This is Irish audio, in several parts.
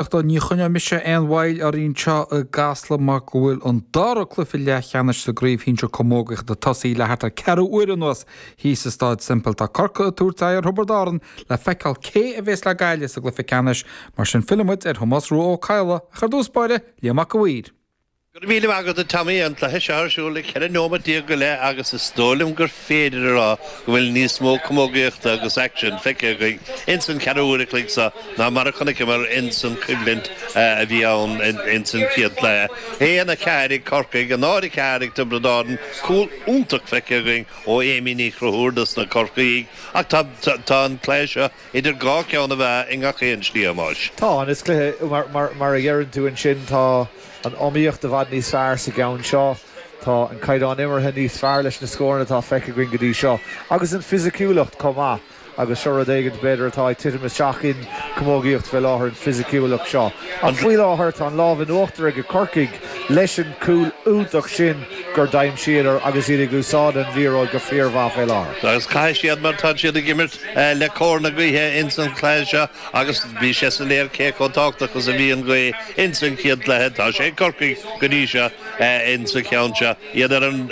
Ach tá, ní choinneoidh mise aon mhoill orainn anseo i gCasla mar go bhfuil an dara cluiche leathcheannais sa gcraobh shinsir camógaíochta tosaithe le thart ar ceathrú uaire anuas thíos i Staid Semple. Tá Corcaigh ag tabhairt aghaidh ar Thiobraid Árann le feiceáil cé a bhéas le Gaillimh sa gcluiche ceannais. Mar sin fillfimid ar Thomás Rua Ó Cadhla, ach ar dtús báire, Liam Mac A Mhaoir. Go raibh míle maith agat a Tommy, an cluiche seo ar siúl le 14 nóimeat go leith agus is dóigh liom gur féidir a rá go bhfuil níos mó camógaíochta agus aicsin feicthe againn ins an cheathrú uair a chloig seo ná mar a chonaiceamar ins an choimhlint a bhí ann ins an chéad cluiche. 1, 4 ag Corcaigh, 0, 4 ag Tiobraid Árann, cúl iontach feicthe againn ó Amy Ní Chonchúir dos na Corcaígh ach tá tá an cluiche seo idir dhá cheann na meá i ngach aon slí a Thomáis. Tá, an is cluiche mar mar mar a deireann tú ansin tá. An iomaíocht i bhfad níos fearr sa gceann seo. Tá an caighdeán imeartha níos fearr leis na scóranna atá feicthe againn go dtí seo, agus an fisiciúlacht chomh maith. Agus seo rud éigin, b'fhéidir, atá ag titim isteach in camógaíocht fé láthair, an fisiciúlacht seo. Ach faoi láthair, tá an lámh in uachtar ag Corcaigh leis an cúl iontach sin gur d'aimsíodar agus iad ag úsáid an liathróid go fíormhaith fé láthair. Agus caithfidh siad, mar táid siad ag imirt le cóir na gaoithe ins an chluiche seo, Agus bhí sé soiléir cé chomh tábhachtach is a bhí an ghaoth ins an chéad cluiche. Tá sé ag Corcaigh go dtí seo ins an cheann seo. Iad ar an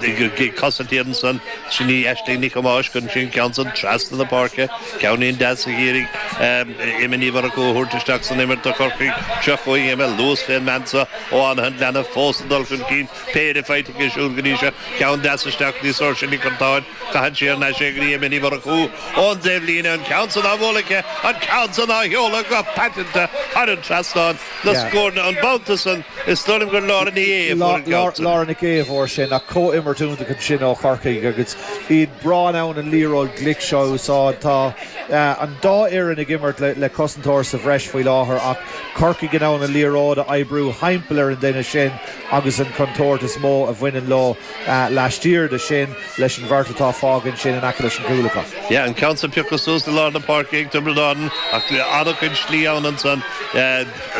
gcosaint iad ansan. Sin í Aisling Nic Thomáis chun cinn ceann san trasna na páirce. Ceannín deas a d'iarraidh Emma Ní Mhurchú a thabhairt isteach san imirt do Chorcaigh. Seo chugainn Emma. Luas fén mbean seo ó Fhánaithe an Ghleanna fós ag dul chun cinn. Péire faighte aici siúd go dtí seo. Ceann deas isteach do Sorcha Nic Artáin. Caitheann sí ar n-ais é go dtí Emma Ní Mhurchú ón dtaobhlíne, an ceann san á bhualadh aici, an ceann san á sheoladh go paiteanta thar an trasnán, an scór an babhta san, is dóigh liom gur Laura Ní Aodha a fuair an ceann san. Laura Nic Aodha a fuair sin, ach comhimirt iontach ansin ó Chorcaigh agus iad breá in ann an liathróid glic seo a úsáid. Tá an dá fhoireann ag imirt le cosantóir sa bhreis faoi láthair ach Corcaigh in ann an liathróid a oibriú thimpeall ar an duine sin agus an chontúirt is mó a bhaineann leo. Laistiar de sin, leis an bheirt atá fágtha ansin in aice leis an gcúl acu. Yeah, an ceann sa pioctha suas i lár na páirce ag Tiobraid Árann ach an-chuid slí ann ansan.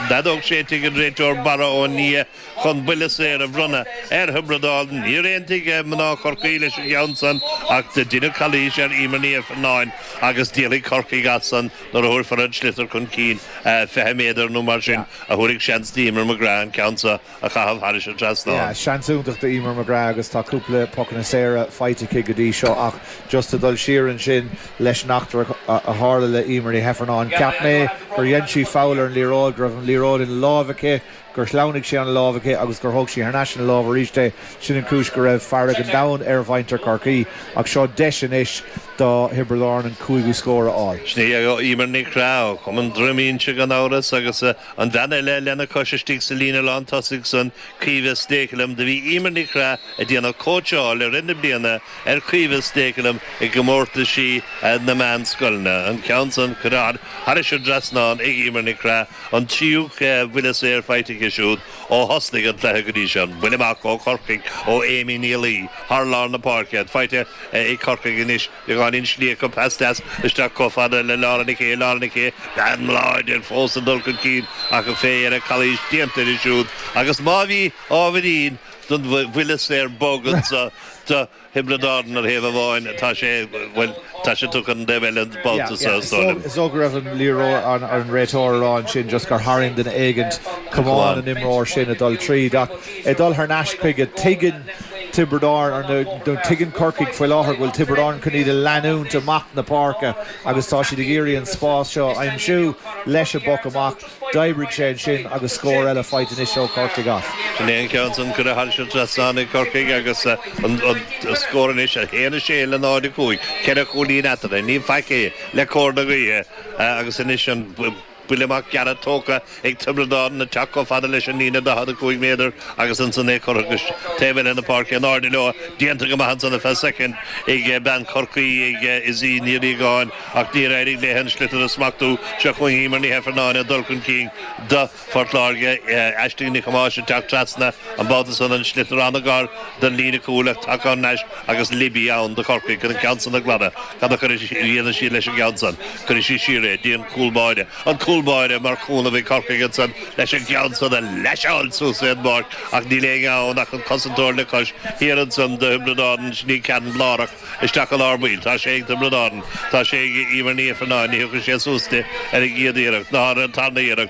Feadóg séidte ag an réiteoir Barra Ó Nia chun buille saor a bhronnadh ar Thiobraid Árann. Níor aontaigh mná Chorcaí leis an gceann san ach deineadh calaois ar Eimear Ní Ifearnáin agus díolfaidh Corcaigh as san nuair a thabharfar an sliotar chun cinn. Fiche méadar nó mar sin a thabharfaidh seans d'Eimear McGrath an ceann sa. a chaitheamh thairis an trasnán. Seans iontach do Eimear McGrath agus tá cúpla pocanna saora faighte aici go dtí seo ach, just a dhul siar ansin leis an eachtra a tharla le Eimear Ní hEifearnáin, cheap mé gur dhein sí foul ar an liathróid, go raibh an liathróid ina láimh aici, gur shleamhnaigh sé óna láimh aici agus gur thóg sí thar n-ais ina láimh arís é. Sin an chúis go raibh fearg an domhain ar mhuintir Chorcaí ach seo deis anois do Thiobraid Árann an cúigiú scór a fháil. Sin í Eimear McGrath ó chumann Dhroim Inse gan amhras agus a An bhean eile lena cois istigh sa líne lán tosaigh san, Caoimhe Stakelum, do bhí Eimear Nic Craith ag déanamh cóitseáil i rith na bliana ar Caoimhe Stakelum i gcomórtaisí na meánscoileanna, an ceann san curtha thairis an dtrasnán ag Eimear Nic Craith, an tríú buille saor faighte aici siúd ó thosnaigh an cluiche go dtí seo, an buille amach ó Chorcaigh ó Amy Ní Laoi thar lár na páirce, faighte ag Corcaigh anois. Beagáinín slí acu, pas deas isteach chomh fada le Laura Nic Aodha, Laura Nic Aodha, bean láidir fós ag dul chun cinn ach ní fheadar an calaois déanta di siúd agus má bhí ábhairín den bhuille saor bog ansan do Thiobraid Árann ar thaobh amháin, tá sé, bhuel, tá sé tugtha don taobh eile an babhta seo, is dóigh liom. Is dóigh go raibh an liathróid ar an réiteoir a rá ansin just gur tharraing duine éigin camán an imreoir sin ag dul tríd ach, ag dul thar n-ais chuige. Tuigeann Tiobraid Árann, nó tuigeann Corcaigh faoi láthair, go bhfuil Tiobraid Árann chun iad a leanúint amach na páirce agus tá siad ag iarraidh an spás seo a aimsiú. Leis an bpoc amach, d'oibrigh sé ansin agus scór eile faighte anois ó Chorcaigh as. Sin é an ceann san, cuireadh thairis an trasnán ag Corcaigh agus an scór anois 1-6 le 0-5. Ceithre chúilín eatarthu. Ní faic é le cóir na gaoithe agus anois an. Buille amach gearra tógtha ag Tiobraid Árann ag teacht chomh fada leis an líne 45 méadar agus ansan é curtha go taobh eile na páirce. In airde leo, déanta go maith ansan ar feadh soicind ag bean Chorcaí, ag Izzy Ní Riagáin, ach níor éirigh léi an sliotar a smachtú. Seo chugainn Eimear Ní hEifearnáin ag dul chun cinn do Phort Láirge, Aisling Nic Thomáis ag teacht trasna, an babhta san an sliotar an-ghar don líne cúil ach tagann ar ais agus Libby ann do Chorcaigh chun an ceann san a ghlanadh. Cad a dhéanfaidh siad leis an gceann san? Cuirfidh siad siar é, go dtí an cúl báire. An cúl báire mar chúnamh ag Corcaigh ansan leis an gceann san a leaseáil suas ar an bpáirc ach níl éinne ann ach an cosantóir le cois thiar ansan do Thiobraid Árann, sin é ceann lárach isteach i lár baill. Tá sé ag Tiobraid Árann. Tá sé ag Eimear Ní Ifearnáin. Ní thiocfaidh sé suas di ar an gcéad iarracht ná ar an tarna iarracht.